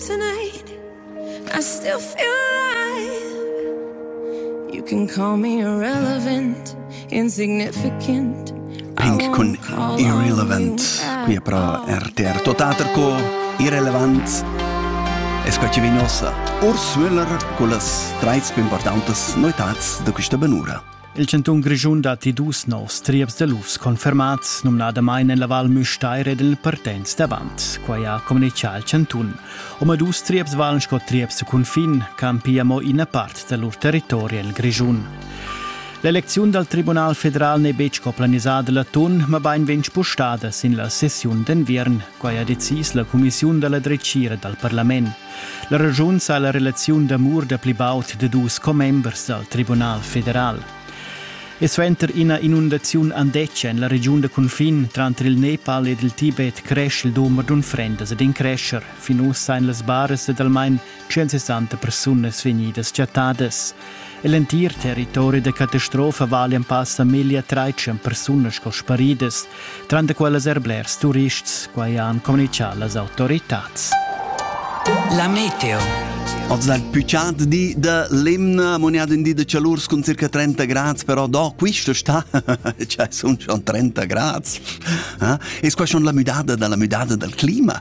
Tonight, I still feel alive. You can call me irrelevant, insignificant. Pink cun Irrelevant, qui è pro RTR Totaterco, irrelevant es quai chi vegn ossa. Urs Müller con las treis più importantes noetats da questa benura. Il chantun Grischun datti dus novs trieps da lufs confermats, numnadamain en la Val Müstair ed en Partenz davant. Quai ha communitgà il chantun. Omadus trieps valan sco trieps cun fin, campi amo ina part da lur territori en il Grischun. L'elecziun dal Tribunal federal n'è betg co planisada l'atun, mabain vegn spustada sin la sessiun d'enviern. Quai ha decis la cumissiun da la dretgira dal parlament. La raschun sa la relaziun d'amur da pli baud da dus commembers dal Tribunal federal. E suenter ina inundaziun andetgia en la regiun da cunfin tranter il Nepal ed il Tibet cresch il dumber d'unfrendas ed in crescher. Fin ussa èn las baras dad almain 160 persunas vegnidas chattadas. L'entir territori da catastrofa vali en pass da meglio 13 persunas sco sparidas, tranter quellas er blers turists, quai han comunicato las autorità. La meteo. Oggi è il più caldo di da Lemna, mondiale in di da calore con circa 30 gradi, però da questo sta c'è sono 30 gradi. Eh? E qua c'è la müdada dalla müdada dal clima.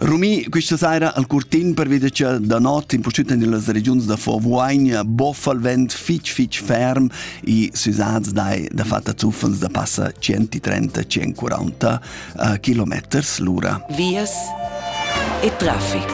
Rumi, questa sera al curtin per veder che da not in purtut en las regiuns da Vorvuogna boffa il vent fitg fitg ferm e susats dai da fatta zuffens da passa 130-140 uh, kilometers l'ura. Vias e traffic.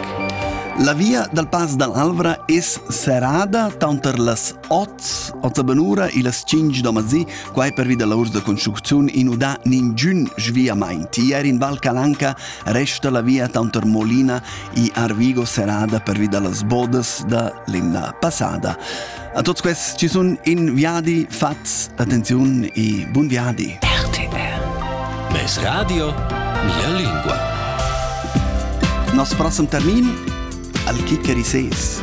La via dal Pass dall'Alvra es serrada tanter las 8, 8 benura e las 5 da mazì Quai pervi da lavurs da construcziun in udà ningün sviamaint. Ier in Val Calanca resta la via tanter Molina e Arvigo serrada pervi da las bodas da l'emna passada. A tots quests ci sun in viadi fats. Attenziun e bun viadi! RTR Mes radio, la lingua. Nos prossem termin al chiccherisés.